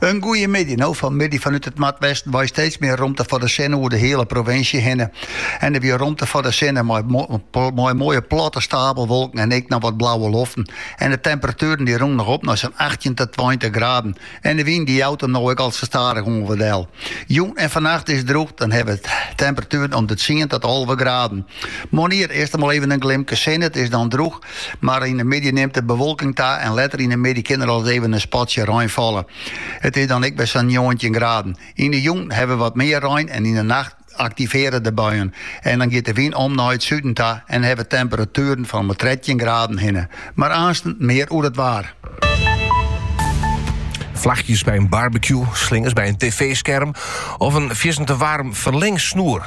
In goeie middei, no fan middei fanút it Noardwesten wei steeds mear romte foar de sinne oer de hiele provinsje hinne. Yn... der wie romte foar de sinne mei moaie platte stapelwolken en ek noch wat blauwe loften. En de temperatueren die rûnen noch op nei sa'n achttjin ta tweintich graden. En de wyn die jout him no ek al sa stadich oan wat del. Jûn en fannacht is it drûch, dan hawwe we temperatueren om de tsien ta alve graden. Moarn is it earst noch even in glimke sin, it is dan drûch. Mar yn de middei nimt de bewolking ta en letter yn de middei kin der ris even in spatsje rein falle. It is dan ek wer sa'n njoggentjin graden. Yn de jûn hawwe we wat mear rein en yn de nacht aktivearje de buien. En dan giet de wyn om nei it suden ta en hawwe temperatueren fan om 'e trettjin graden hinne. Mar aansten mear oer it waar. Flachjes by in barbecue, slingers by in tv-skerm of in fierstente waarm ferlengsnoer.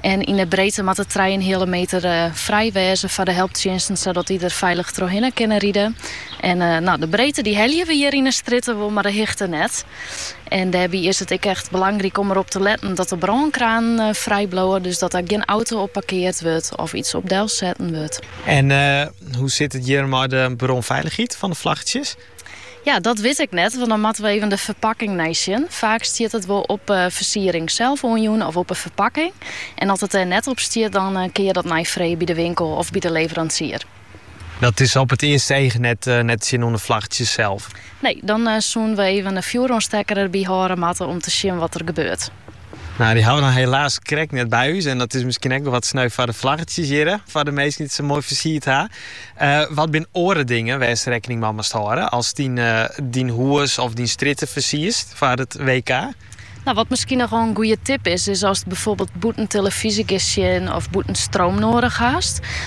En yn 'e breedte moat it trije en in heale meter frij wêze foar de helptsjinsten sadat dy der feilich trochhinne kinne ride. En no, de breedte dy helje we hjir yn 'e strjitte wol, mar de hichte net. En dêrby is it ek echt belangryk om derop te letten dat de brânkranen frij bliuwe, dus dat der gjin auto op parkeard wurdt of iets op delset wurdt. En hoe sit it hjir mei de brânfeilichheid fan de flaggertsjes? Ja, dat wit ik net, want dan moatte we even de ferpakking neisjen. Faak stiet it wol op 'e fersiering sels oanjûn of op 'e ferpakking. En as it dêr net op stiet, dan kin je dat neifreegje by de winkel of by de leveransier. Dat is op it earste each net te sjen oan 'e flaggertsjes sels? Nee, dan soenen we even in fjoeroanstekker der by hâlde moatte om te sjen wat der gebeurt. Nou, dy hawwe we dan helaas krekt net by ús en dat is miskien ek wol wat sneu foar de flaggertsjes hjirre, foar de minsken dy't it sa moai fersierd ha. Wat binne oare dingen wêr'tst rekkening mei moatst hâlde ast dyn hûs of dyn strjitte fersierst foar it WK? Nou, wat miskien noch wol in goede tip is, is ast byfoarbyld bûten telefyzje giest sjen of bûten stroom noadich hast,